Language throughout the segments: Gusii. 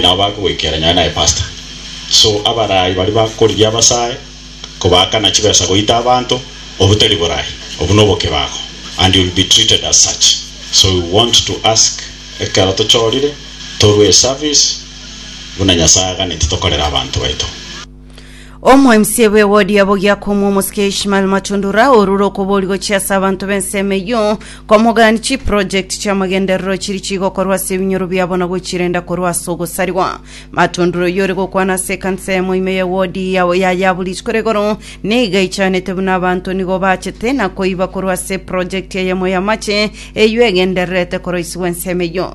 nabo bakogoikera nyore naye pastor so abarayi baria bakorigia abasae kobaakana chibesa goita abanto obutari borayi obu nobokebago and you will be treated as such so we want to ask ekero tochorire torue eservice buna nyasae aganeti tokorere abanto baito. Omoemisia bw'ewodi ya Bogiakomu omosike Ishmael Matundura orure okobori gochia ase abanto b'ensemo eyio komogani chiprojekti chi'amagenderero chiri chigokorwa ase ebinyoro biabo na gochirenda korwa ase ogosarigwa. Matundura oyio ore gokwana ase ekanisa eyemo ime y'ewodi ya ya Yabulich kore igoro niga ichanete buna abanto nigo bachete na koiba korwa ase eprojekti eyemo y'amache eyio egendererete koroisigwa ensemo eyio.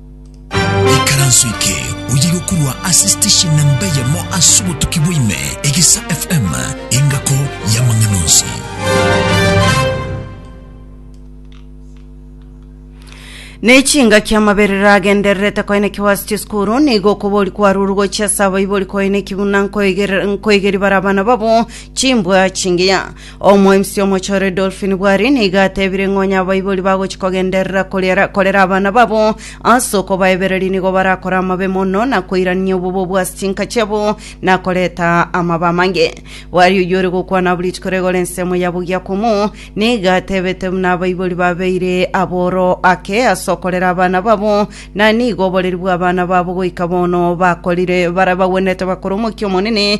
Ikaranso eke oye yokorwa ase station namba eyemo ase obotuki bwaime, Egesa FM, engako y'amang'ana onsi. Nechingaki amaberero agendererete koenekigwa ase chisukuru nigo okobori kwaruru gochia ase abaibori koenekigwa na nkoiger- nkoigeri bare abana babo chimbwa chingiya Omoemisi omochore Dolphin Bwari nigo atebire ng'a onye abaibori bagochia kogenderera koriera- korera abana babo ase okobaebereria nigo barakore amabe mono na koirania obobe bwa ase chinka chiabo na koreta amabe amange. Bwari oyio ore gokwana abwo rituko rigore ensemo ya bogia komo nigo atebete buna abaibori babeire aboro ake ase okorera abana babo na nigo oboreri bw'abana babo goika bono bakorire bare bagwenerete bakore omokia omonene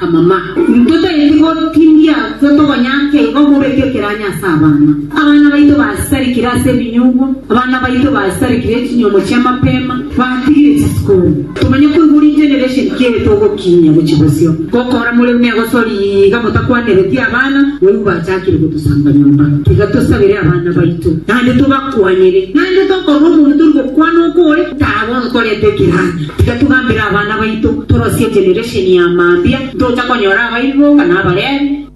Amama, intwe togeti gotindia intwe togonyake igo mobeke ekeranyo ase abana. Abana baito basitarikire ase ebinyugwa, abana baito basitarikire echinyuomo chi'amapema, batigire chisukuru. Tomanye koigwa regeneration ki eye togokinyia gochia bosio. Gokora more buna egosori iga motakwaneretie abana, boigo bachakire gotosamba nyomba. Tiga tosabere abana baito, naende tobakwanere. Naende tokorora omonto tori gokwana okore, taha bono torete ekeranyo. Tiga togambere abana baito, torosie generation ya mambia, ntocha konyora abaibwoka na Abalevi.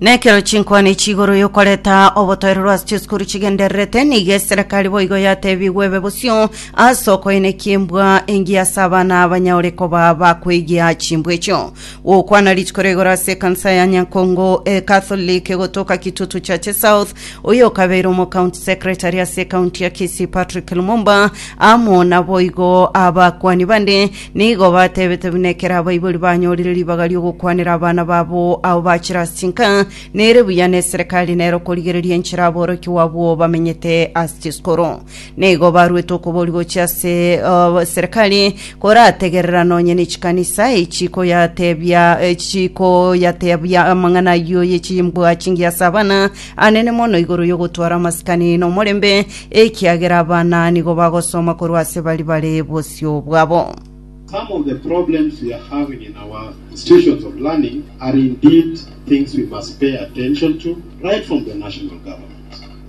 Nekero chinkwane echi igoro yokoreta obotoerero ase chisukuru chigendererete, nigo eserekari boigo yatebigwe ebe bosio ase okoenekia embwa engiya ase abana abanyaure koba bakwegia chimbwa echio. Gokwana rituko ria igoro ase ekansa ya Nyankongo Catholic gotoka Kitutu Church South, oyokabeire omocounty secretary ase ecounty ya Kisii Patrick Lumumba amo naboigo abakwani bande nigo batebete buna ekero abaibori banyorire ribaga ri'ogokwanera abana babo abo bachire ase chinka nere buya neserekari nero korigereria enchera aborokigwa abwo bamenyete ase chisukuru Nigo baruete okobori gochia ase eserekari korategerera nonye ne chikanisa echikoyatebia echikoyatebia amang'ana ayio ye chimbwa chingiya ase abana anene mono igoro y'ogotwara amasikani nomorembe, ekiagera abana nigo bagosoma korwa ase bari bare bosio bwabo. Some of the problems we are having in our institutions of learning are indeed things we must pay attention to right from the national government.